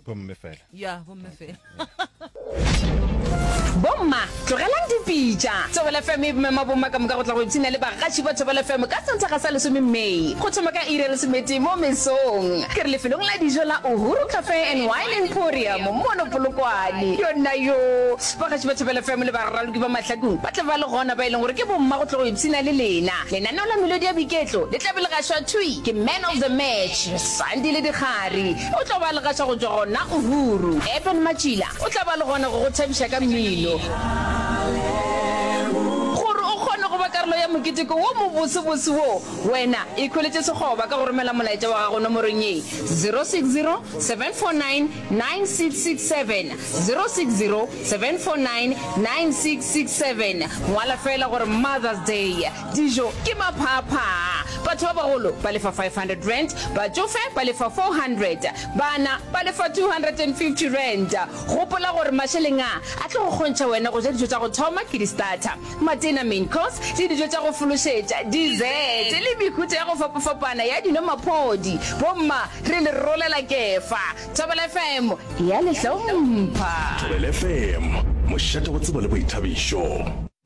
bomme fela ya bomme fela bomma tlogelang dipitša tsebele fm e bomema bomma ka moka go tla go ipshina le bagaši ba thobele fm ka senthaga sa lesome may go thoma ka iri ya lesometee mo mesong ke re lefelong la dijo la uhuru cafe and wine emporium mono polokwane yona yo bagaši ba thobele fm le baraloki ba mahlakong ba tla ba le gona ba e leng gore ke bomma go tla go ipshina le lena lenaneo la melodi ya biketlo le tlabe le gašwa thui ke man of the match sandi le dikgari O tlo ba le gaša go tšwa gona o ruru. Eben Matšila o tla ba le gona go go thabiša ka mmino. Gore o kgone go ba karolo ya moketeko wo mobosebose wo, wena ikhweletše sekgoba ka go romela molaetša wa gago nomorong ye, 060 749 9667, 060 749 9667. Ngwala feela gore Mother's Day. Dijo ke maphaphaa. Batho ba bagolo ba lefa R500, batšofe ba lefa R400, bana ba lefa R250. Gopola gore mašeleng a a tlo go kgontšha wena go ja dijo tša go thoma ke di-starter, matena, main course, le dijo tša go fološetša, dessert, le mehuta ya go fapafapana ya dino, maphodi. Bomma re le rolela kefa. Thobela FM ya le hlompha. Thobela FM, mošate wa tsebo le boithabišo.